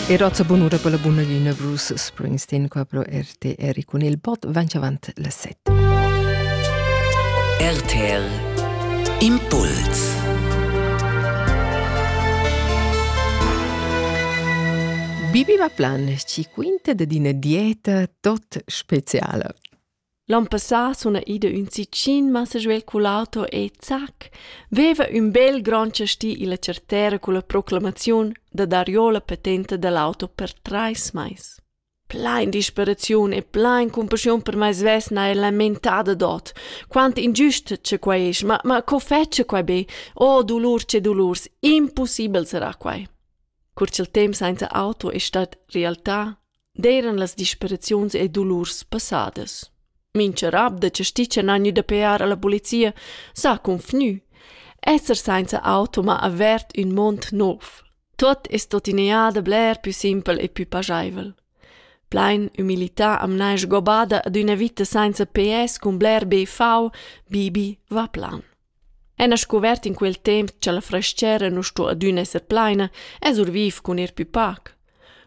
Era ozza bunura per la buna lina Bruce Springsteen qua pro RTR cun il bot vanch avant las 7. RTR Impuls Bibi va plan ci quinte de dina dieta tot speciala. L'on passà suna ida ün sitgin massa svelt cul auto e zac, veva ün bel grand chastì illa chartera culla proclamaziun da dar jo la patenta da l'auto per trais mais. Plain disperaziun e plain cumpaschiun per mai svess n'haja lamentada dod. Quant ingiust cha quai es, ma, ma co fetscha quai be? Oh, dolurs che dolurs, impossibel sarà quai. Cur cha'l temp sainza auto es stat realtà, d'eiran las disperaziuns e dulurs passadas. Mincha rab da chasticcia n'ha gnü da pear a la polizia s'ha confgnü. Esser sainza auto m'ha avert ün mond nouv. Tuot es tuottina da bler pü simpel e pü pajaivel. Plain umilità am n'haja gobada ad üna vita sainza PS cun bler BV, Bibi va plan. Ena scuvert in quel temp cha la frastgera nu sto adüna esser plaina, es our viv cun ir pü pac.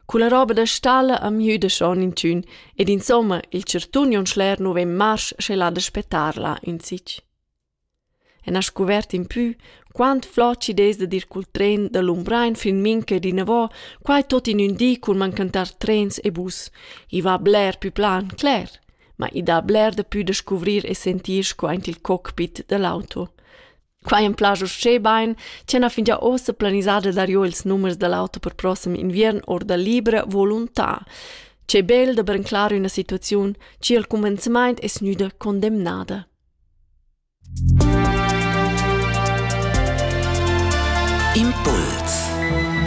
Culla roba da stalla am müda schon inchün ed insomma il chartun on schler nu vegn marsch sche là da spettar là insich. Ena scuvert in pü, quant flot chi'd es dad ir cul tren da Lumbrain fin mincha ed inavò, quai tot in ün di cun mancantar trens e bus. I va bler pü plan, cler. ma i dà bler dapü da scuvrir e sentir sco aint il cockpit da l'auto. Quai am plascha uschè bain ch'ella fingià uossa planisada darìo ils numers da l'auto per prossem inviern our da libra volontà. Che bel da branclar üna situaziun chi al cumenzamaint es gnüda condemnada. Impuls